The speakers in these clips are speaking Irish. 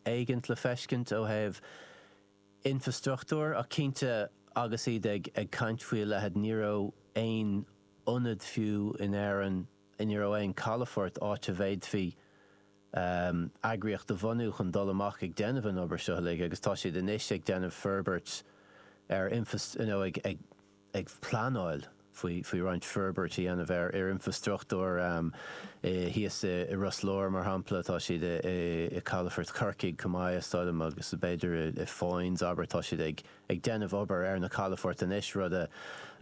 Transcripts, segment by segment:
éigin le feiscint ó thaobh infreastruchtúir ach cinnte agus iad ag caint faoi a leithead ní raibh aon ionad fiú in Éirinn, ní raibh aon calafort áit a bhféadfaí eagraíocht a bhunú chun dul amach ag déanamh an obair seo uilig agus tá siad anois ag déanamh forbairt ar infreastruchtúr, you know, ag. ag pleanáil faoi roinnt forbairt a dhéanamh ar infrastruchtúr thíos i Ros Láir, mar shampla. Tá siad i gcalafort Chorcaí chomh maith, is dóigh liom, agus b'fhéidir i Foynes, abair. Tá siad ag déanamh obair ar na calafoirt anois, rud a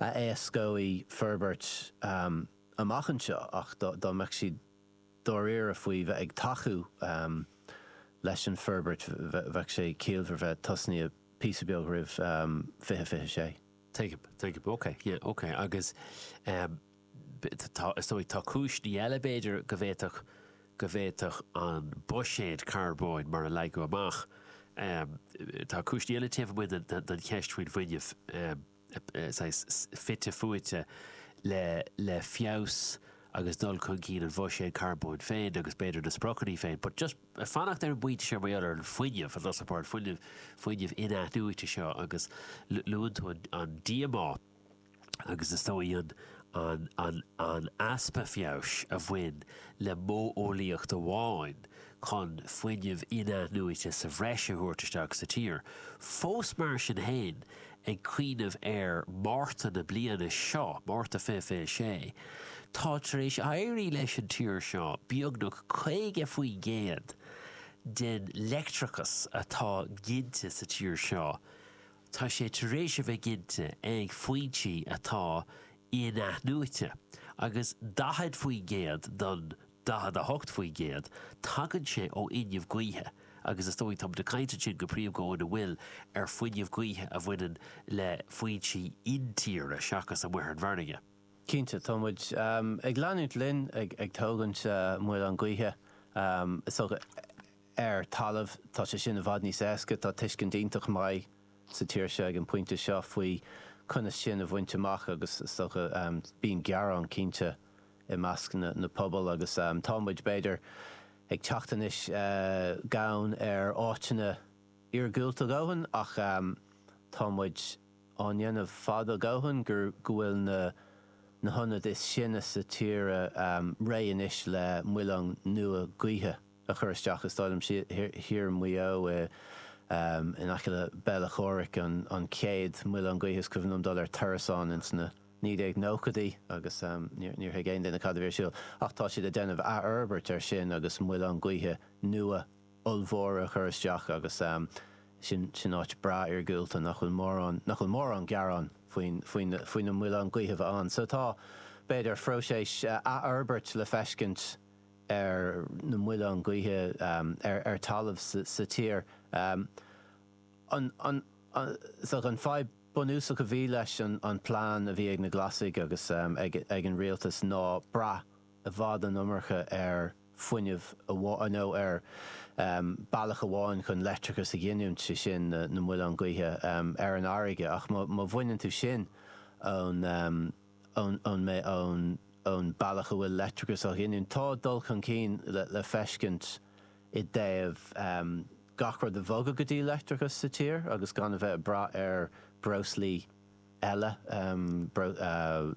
éascóidh forbairt amach anseo, ach dá mbeadh siad dáiríre faoi bheith ag tacú leis an bhforbairt, bheadh sé ciallmhar bheith tosnaithe píosa beag roimh 2026. Tuigim. Tuigim. Ok. Yeah. Ok. Agus, em, tá, is dóigh, tá cúiseanna eile, b'fhéidir, go bhféadfadh, go bhféadfadh an buiséad carbóin mar a leagadh amach, em, tá cúiseanna eile taobh amuigh den, den, den cheist faoin bhfuinneamh, em, saghas fite fuaite le, le feabhas agus dul chun cinn an bhuiséid carbóin féin agus b'fhéidir na spriocanna féin. But just. Ag fanacht ar an bpointe seo, mar gheall ar an fuinneamh, an dúshlán 's an port fuinneamh, fuinneamh inathnuaite seo agus luann tú an díomá agus is dóigh an easpa feabhais a bhain le modheolaíocht amháin chun fuinneamh inathnuaite sa bhreis a thabhairt isteach sa tír, fós mar sin féin ag cuimhneamh ar Mhárta na bliana seo, Márta 2026, tá tar éis éirí leis an tír seo beagnach 50% den leictreachas atá ginte sa tír seo, tá sé tar éis a bheith ginte ag foinsí atá inathnuaite, agus 40% don. 48%, tagann sé ó fhuinneamh gaoithe agus is dóigh, tá muid ag caint ansin go príomha go hiondúil ar fuinneamh gaoithe a bhaineann le foinsí intíre seachas amuigh ar an bhfarraige. Cinnte, tá muid ag leanúint linn ag tógaint muileann gaoithe, is dócha, ar talamh. Tá sé sin i bhfad níos éasca, tá tuiscint iontach maith sa tír seo ag an pointe seo faoi conas sin a bhaint amach agus is dócha bíonn gearán cinnte, i measc na pobal agus tá muid, b'fhéidir, ag teacht anois gann ar áiteanna iargúlta a dhóthain ach tá muid á ndéanamh fada a dhóthain go bhfuil na hionaid is sine sa tír réidh anois le muileann nua gaoithe a chur isteach, is dóigh liom, thiar i Maigh Eo, in aice le Béal Átha Chomhraic, an chéad muileann gaoithe is cuimhin liom dul ar turas ann ins na. 1990idí agus níor thuig aon duine cad a bhí ar siúl. Ach tá siad ag déanamh athfhorbairt air sin agus muileáin gaoithe nua ollmhóra a chur isteach agus sin áit breá iargúlta nach bhfuil mórán, nach bhfuil mórán gearán faoin, faoi na muileáin gaoithe a bheith ann. So tá, b'fhéidir, phróiseas athfhorbairt le feiscint ar na muileáin gaoithe ar talamh sa tír. an fadhb bunúsach a bhí leis an plean a bhí ag na Glasaigh agus ag an rialtas ná brath i bhfad an iomarca ar fhuinneamh amháin, nó ar bealach amháin chun leictreachas a ghiniúint, sé sin na muileáin gaoithe ar an fharraige. Ach má bhaineann tú sin ón bealach a bhfuil leictreachas á ghiniúint, tá dul chun cinn le feiscint i dtaobh. gach rud a bhogadh go dtí leictreachas sa tír agus gan a bheith ag brath ar bhreoslaí eile,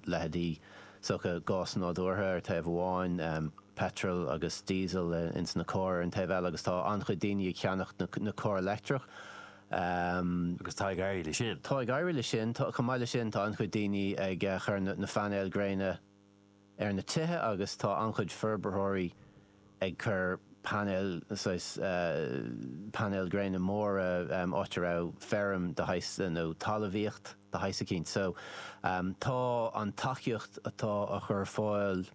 leithéidí stoca gás nádúrtha ar thaobh amháin, peitreal agus díosal ins na cairr ar an taobh eile, agus tá an-chuid daoine ag ceannacht na cairr leictreach. Agus tá ag éirí leis sin. Chomh maith leis sin, tá an-chuid daoine ag chur na phainéil gréine. ar na tithe agus tá an-chuid forbarthóirí ag cur painéil, saghas painéil gréine móra, áit a raibh feirm de shaghas nó talamhaíocht de shaghas eicínt. So tá an tacaíocht atá á chur ar fáil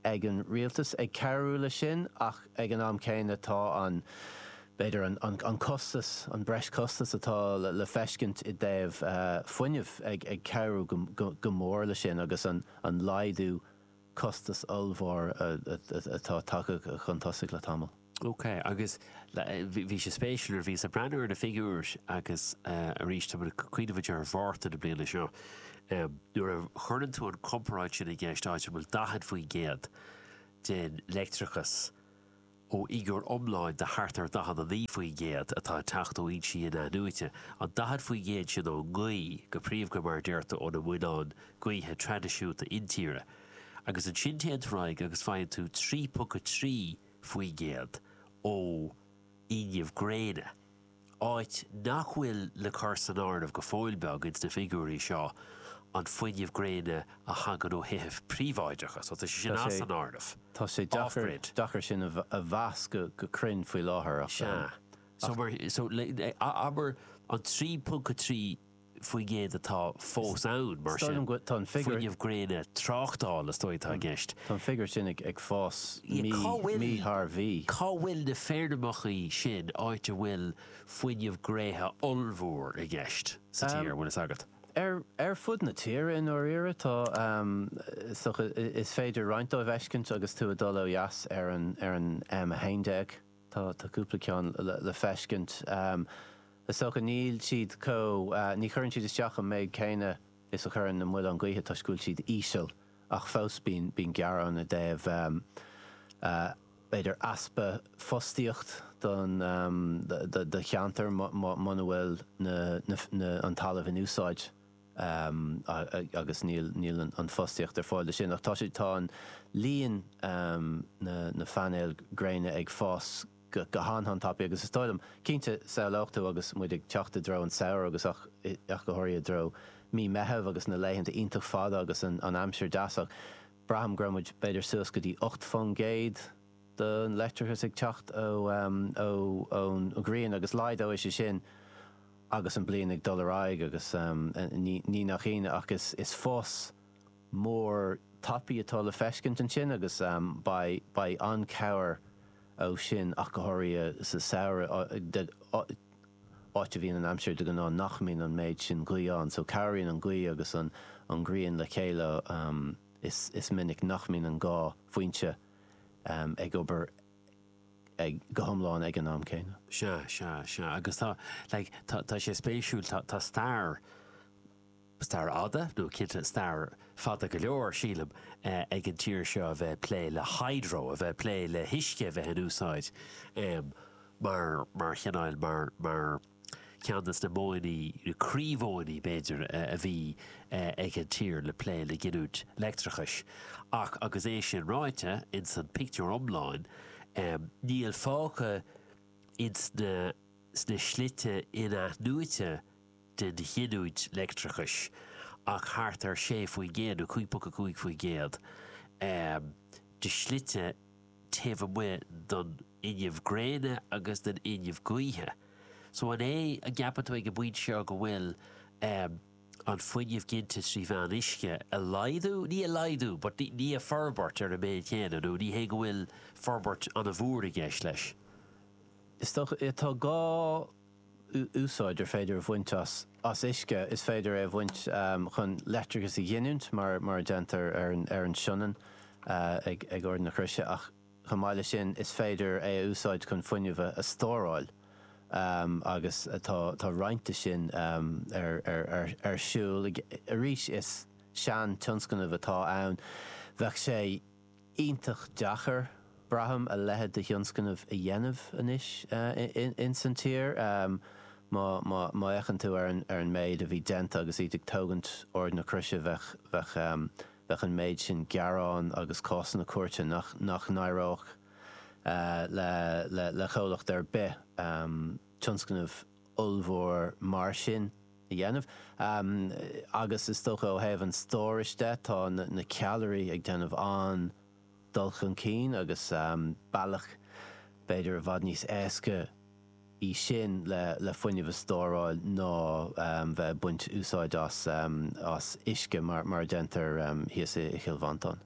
ag an rialtas ag cabhrú leis sin ach ag an am céanna tá an, b'fhéidir, an costas, an breis-chostas atá le feiscint i dtaobh fuinneamh ag cabhrú go mór leis sin agus an laghdú costas ollmhór atá tagtha chun tosaigh le tamall. Ok, agus bhí sé spéisiúil nuair a bhíos ag breathnú ar na figiúir agus arís, táimid ag cuimhneamhaint ar Mhárta na bliana seo, nuair a chuireann tú an comparáid sin i gceist áit a bhfuil 40% den leictreachas, Ó fhigiúr iomlán de thart ar 49% atá ag teacht ó fhoinsí inathnuaite, an 40% sin ón ngaoth, go príomha mar a deirtear ó na muileáin gaoithe traidisiúnta intíre, agus ansin téann tú ar aghaidh agus faigheann tú 3.3% ó fhuinneamh gréine. Ábhar nach bhfuil le cur san áireamh go fóill beag ins na figiúirí seo an fuinneamh gréine a thagann ó thithe príobháideacha, so tá sé sin as an áireamh. Tá sé deacair sin a mheas go cruinn faoi láthair ach. Sea. So abair an 3.3. faoin gcéad atá fós ann, mar sin, fuinneamh gréine tráchtála, is dóigh, atá i gceist. Tá an figiúr sin ag fás mí thar mhí. Cá bhfuil na feirmeacha sin áit a bhfuil fuinneamh gréine ollmhór i gceist sa tír, an bhfuil fhios agat? Ar fud na tíre, i ndáiríre, tá, so is féidir roinnt dóibh fheiscint agus tú ag dul ó dheas ar an M11. Tá, tá cúpla ceann le feiscint. Is dócha níl siad chomh, ní chuireann siad isteach an méid céanna is a chuireann na muileáin gaoithe toisc go bhfuil siad íseal ach fós bíonn gearán i dtaobh b'fhéidir easpa fostaíochta don do cheantar muna bhfuil an talamh in úsáid. agus níl an fostaíocht ar fáil do sin. Ach tá sé, tá an líon na painéil gréine ag fás go han-han tapaidh agus is dóigh liom, cinnte, samhlófá agus muid ag teacht i dtreo an samhradh agus ach ach go háirithe i dtreo mí Meitheamh agus na laethanta iontach fada agus an an aimsir deas ach braithim go raibh muid b'fhéidir suas go dtí ocht faoin gcéad don leictreachas ag teacht ó ó ón ghrian agus laghdóidh sé sin Agus an bliain ag dul ar aghaidh agus ní nach ionadh ach is fás mór tapaidh atá le feiscint ansin agus beidh an-cabhair ó sin ach go háirithe sa samhradh áit a bhíonn an aimsir de ghnáth nach mbíonn an méid sin gaoth ann so cabhraíonn an gaoth agus an ghrian le chéile is minic nach mbíonn an dhá foinse ag obair go hiomlán ag an am céanna. Sea, sea, sea. Agus tá, like, tá, tá sé spéisiúil, tá, tá stair, stair fhada, nó cinnte stair fada go leor, sílim, ag an tír seo a bheith ag plé le hydro, a bheith ag plé le huisce a bheith in úsáid mar, mar chineál, mar, mar. Ceann de na modhanna, na croímhodhanna b'fhéidir, a bhí ag an tír le plé le giniúint leictreachais. Ach agus é sin ráite, ins an pictiúr iomlán, níl fágtha ins na sna slite in-athnuaite den ghiniúint leictreachais ach thart ar 6%, nó 5.5%, de shlite taobh amuigh den fhuinneamh gréine agus den fhuinneamh gaoithe. So an é an gceapann tú ag an bpointe seo go bhfuil ehm an fuinneamh ginte trí mheán uisce a laghdú, ní a laghdú but ní ní a forbairt ar an mbealach céanna nó ní hé go bhfuil forbairt an-mhór i gceist leis? Is dócha, tá gá úsáid ar féidir a bhaint as uisce, is féidir é a úsáid chun leictreachas a ghiniúint, mar a déantar ar an Sionainn ag Ard na Croise, ach chomh maith leis sin, is féidir é a úsáid chun fuinneamh a stóráil, agus tá roinnt de sin ar siúl. Arís, is sean-tionscnamh atá ann. Bheadh sé. iontach deacair, braithim, a leitheid de thionscnamh a dhéanamh anois ins an tír. Má fhéachann tú ar an méid a bhí déanta agus iad ag tógaint Ard na Croise bheadh an méid sin gearán agus cásanna cúirte nach n-éireodh le comhlacht ar bith tionscnamh ollmhór mar sin a dhéanamh. Agus is dócha ó thaobh an stórais de, tá na ceallraí ag déanamh an-dul chun cinn agus bealach b'fhéidir i bhfad níos éasca í sin le fuinneamh a stóráil ná bheith ag baint úsáid as uisce mar a déantar thíos i gCill Mhantáin.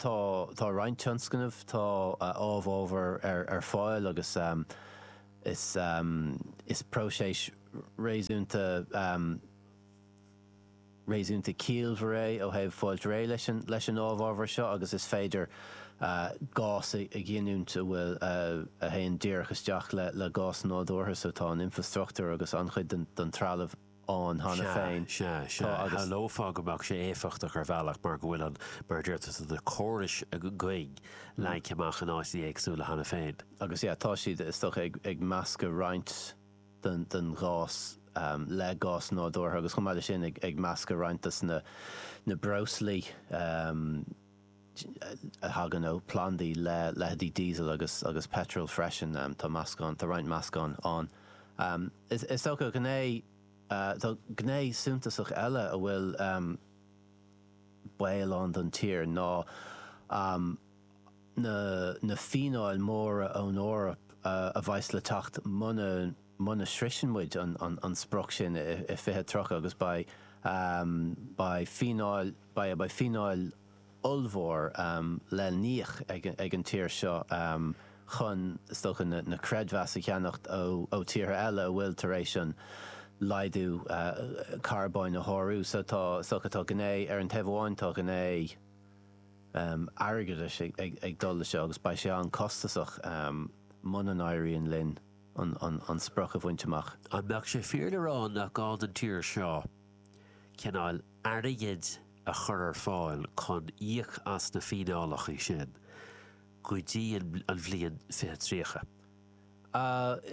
Tá tá roinnt tionscnamh tá amhábhar ar ar fáil agus is is próiseas réasúnta réasúnta ciallmhar é ó thaobh fáilt réidh leis an leis an amhábhar seo agus is féidir gás a a ghiniúint a bhfuil a théann díreach isteach le le gás nádúrtha so tá an infrastruchtúr agus an-chuid den den trealamh ann cheana féin. Sea, sea, sea. Tá agus. Shamhlófá go mbeadh sé éifeachtach ar bhealach mar go bhfuil an, mar a dúirt tusa, na córais gainn leagtha amach in áiteanna éagsúla cheana féin. Agus yeah, tá siad, is dócha, ag meascadh roinnt den ghás le gás nádúrtha agus chomh maith leis sin ag meascadh roinnt de na breoslaí. thagann ó phlandaí le leitheidí Diesel agus agus Petrol freisin. Tá meascán, tá roinnt meascán ann. Is is dócha ghné, tá gné suntasach eile a bhfuil baol ann don tír ná na na fíneáil móra ón Eoraip a bheas le teacht muna muna sroiseann muid an sprioc sin i 2030 agus beidh beidh fíneáil beidh beidh fíneáil ollmhór le híoc ag ag an tír seo chun is dócha na na creidmheas a cheannacht ó ó tíortha eile a bhfuil tar éis an laghdú carbóin a shárú so tá so tá gné ar an taobh amháin tá gné airgeadais ag ag ag dul le seo agus beidh sé an-costasach muna n-éiríonn linn. an sprioc a bhaint amach. An mbeadh sé fíor le rá nach gá don tír seo an cineál airgid a chur ar fáil chun íoc as na fíneálacha sin go dtí an bhliain 2030?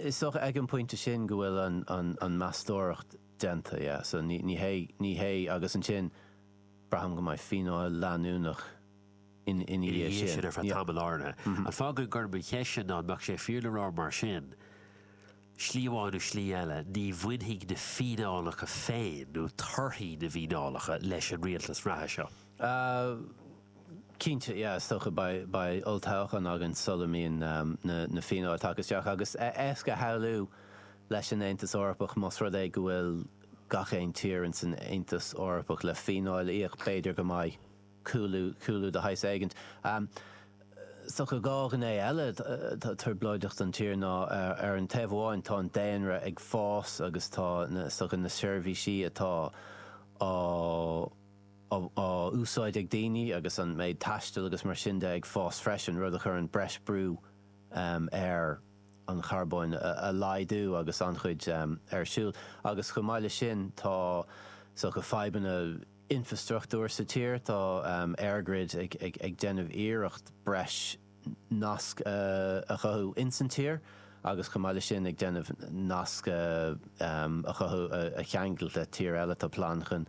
Is dócha ag an bpointe sin go bhfuil an mheastóireacht déanta, yeah, so ní hé, ní hé, agus ansin braithim go mbeidh fíneáil leanúnach, ina dhiaidh sin ar feadh tamaill áirithe. An fáth go gcuirim an cheist sin ná an mbeadh sé fíor le rá mar sin, slí amháin nó slí eile, ní bhainfidh na fíneálacha féin, nó torthaí na bhfíneálacha, leis an rialtas reatha seo? Cinnte, yeah, is dócha beidh olltoghchán againn sula mbíonn na fíneáil tagtha isteach, agus is éasca a shamhlú leis an Aontas Eorpach, más rud é go bhfuil gach aon tír ins an Aontas Eorpach le fíneáil a íoc, b'fhéidir go mbeidh. cúlú, cúlú de shaghas éigint. Is dócha dhá ghné eile atá trioblóideach don tír ná, ar an taobh amháin, tá an daonra ag fás agus tá na, is dócha, na seirbhísí atá á, á, á úsáid ag daoine agus an méid taistil agus mar sin de ag fás freisin, rud a chuireann breis brú ar an charbóin a laghdú agus an-chuid ar siúl. Agus chomh maith leis sin, tá, is dócha, fadhbanna. infreastruchtúir sa tír, tá EirGrid ag déanamh iarracht breis nasc a chothú insan tír agus chomh maith le sin ag déanamh nasc a chothú a cheangal le tír eile. Tá plean chun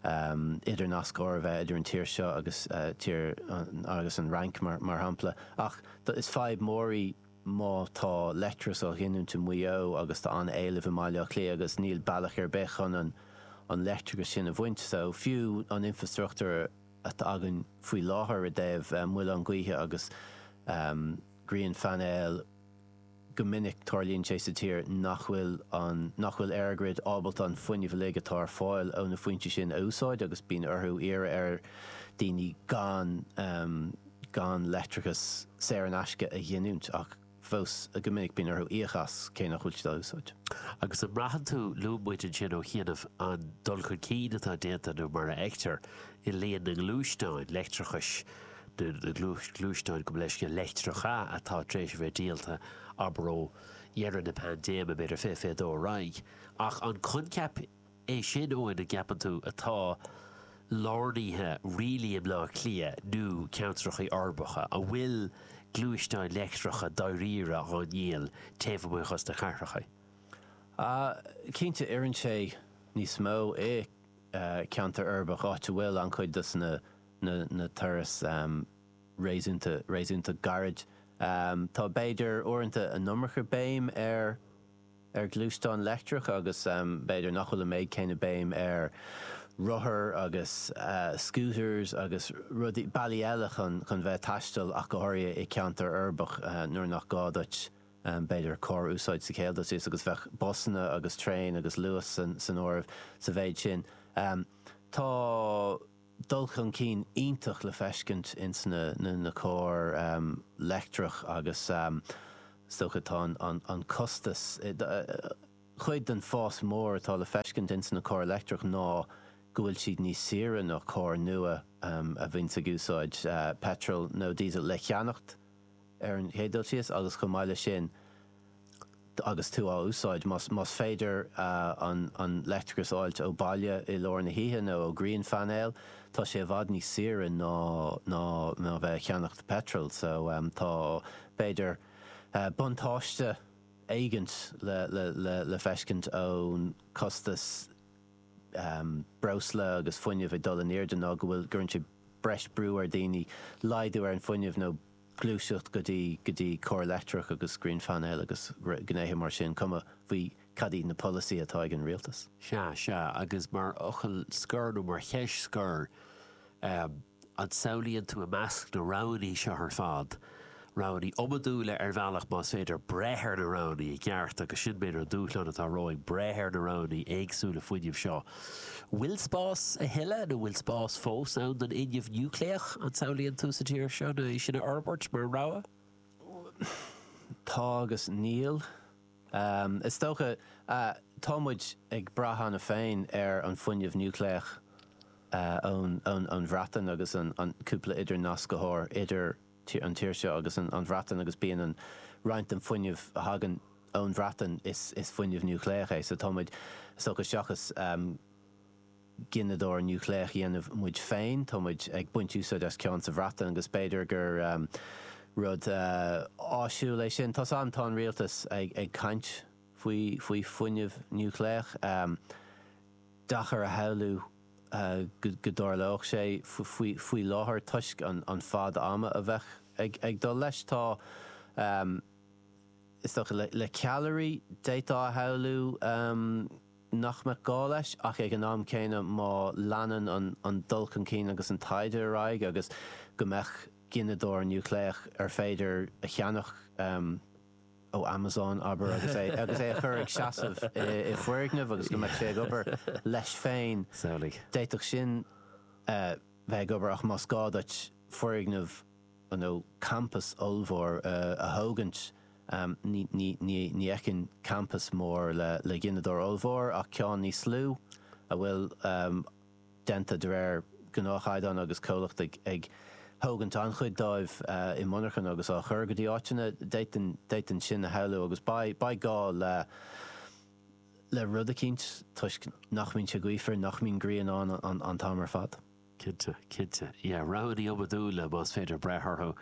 idirnascaire a bheith idir an tír seo agus an Fhrainc mar shampla. Ach is fadhb mór í. má tá leictreachas á ghiniúint i Maigh Eo agus tá an-éileamh i mBaile Átha Cliath agus níl bealach ar bith chun an leictreachas sin a bhaint, so fiú an infreastruchtúr atá againn faoi láthair i dtaobh muilinn ghaoithe agus grianphainéil, go minic tarlaíonn sé sa tír nach bhfuil an, nach bhfuil EirGrid ábalta an fuinneamh uilig atá ar fáil ó na foinsí sin a úsáid agus bíonn orthu iarraidh ar daoine gan. gan leictreachas saor in aisce a ghiniúint, ach fós go minic bíonn orthu íoc as, cé nach bhfuil siad á úsáid. Agus an mbraitheann tú, luaigh muid ansin ó chianaibh an dul chun cinn atá déanta, nó mar a fheictear, i líon na ngluaisteáin leictreachais, nó na gluaisteáin, gabh mo leithscéal, leictreacha atá tar éis a bheith díolta, abair ó dheireadh na paindéime, b'fhéidir, 2022 ar aghaidh. Ach an coincheap. É sin, Eoin, an gceapann tú atá lárnaithe dáiríre i mBleá Cliath nó ceantracha uirbeacha a bhfuil gluaisteáin leictreacha dáiríre indéanta taobh amuigh dhos na cathracha? Cinnte, oireann sé níos mó i gceantar uirbeach, áit a bhfuil an-chuid dos na turais réasúnta gairid. Tá b'fhéidir uaireanta an iomarca béim ar ar ghluaisteán leictreach agus b'fhéidir nach bhfuil an méid céanna béim ar rothair agus scooters agus rudaí, bealaí eile chun chun bheith ag taisteal ach go háirithe i gceantar uirbeach nuair nach gá duit b'fhéidir carr a úsáid sa chéad dul síos agus bheadh busanna agus traein agus luas san áireamh sa mhéid sin. Tá. dul chun cinn iontach le feiscint ins na cairr leictreacha agus is dócha an costas, cuid den fás mór atá le feiscint ins na cairr leictreacha ná go bhfuil siad níos saoire ná cairr nua a bhíonn ag úsáid peitreal nó diesel, le cheannacht ar an chéad dul síos agus chomh maith leis sin, agus tú á úsáid, más féidir an leictreachas a fháilt ó bhaile i lár na hoíche nó ó ghrianphainéal, tá sé i bhfad níos saoire ná a bheith ag ceannacht peitril. So, tá, b'fhéidir, buntáiste éigint le feiscint ón costas breosla agus fuinnimh ag dul in airde ná go bhfuil, gcuireann sé breis brú ar daoine laghdú ar an fuinneamh nó, gluaiseacht go dtí go dtí cairr leictreacha agus grianphainéil agus gnéithe mar sin, cuma faoi cad iad na polasaí atá ag an rialtas. Sea, sea, agus mar fhocal scoir nó mar cheist scoir, an samhlaíonn tú i measc na roghanna seo ar fad roghanna iomadúla ar bhealach más féidir breith ar na roghanna i gceart agus sin b'fhéidir an dúshlán atá romhainn, breith ar na roghanna éagsúla fuinnimh seo bhfuil spás a thuilleadh nó bhfuil spás fós ann don fhuinneamh núicléach an samhlaíonn tú sa tír seo nó é sin a fhorbairt mar rogha? Tá agus níl. Is dócha, tá muid ag brath cheana féin ar an bhfuinneamh núicléach ón Bhreatain agus an cúpla idirnascthóir, idir. an tír seo agus an Bhreatain agus bíonn roinnt den fuinneamh a thagann ón Bhreatain is fuinneamh núicléach é. So táimid, is dócha, seachas gineadóir núicléach a dhéanamh muid féin, táimid ag baint úsáid as ceann sa Bhreatain agus b'fhéidir gur rud áisiúil é sin. Tá san, tá an rialtas ag caint faoi faoi fuinneamh núicléach. Deacair a shamhlú. go dtarlódh sé. Faoi láthair, toisc an fad ama a bheadh ag dul leis, tá, is dócha, le ceallairí, d'fhéadfá a shamhlú nach mbeadh gá leis, ach ag an am céanna, má leanann an dul chun cinn agus an taighde ar aghaidh, agus go mbeadh gineadóir núicléach arbh fhéidir a cheannach, ó Amazon, abair, agus é agus é a chur ag seasamh i i bhfoirgneamh agus go mbeadh sé ag obair leis féin. Samhlaigh. D'fhéadfadh sin bheith ag obair ach más gá duit foirgneamh nó campas ollmhór a thógaint, ní ní ní ní fheicfinn campas mór le le gineadóir ollmhór ach ceann níos lú a bhfuil, déanta de réir gnáthchaighdeán agus comhlacht ag thógaint an-chuid dóibh i monarchan agus á chur go dtí áiteanna. D'fhéadfainn sin a shamhlú agus beidh gá le rud eicínt toisc nach mbíonn sé gaofar, nach mbíonn grian ann an t-am ar fad. Cinnte, cinnte. Yeah, roghanna iomadúla más féidir breith orthu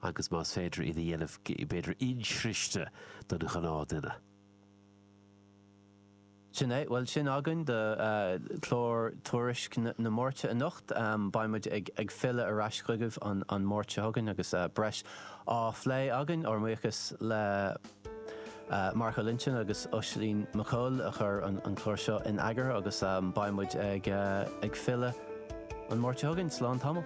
agus más féidir iad a dhéanamh b'fhéidir insroichte don ghnáthduine. Sin é. Bhuel, sin againn do chlár Tuairisc na Máirte anocht. Beidh muid ag filleadh ar ais chugaibh an Máirt seo chugainn agus breis á phlé againn. Ár mbuíochas le Mark Ó Loinsigh agus Oisín Mac Cóil a chuir an clár seo in eagar agus beidh muid ag filleadh an Máirt seo chugainn. Slán tamall.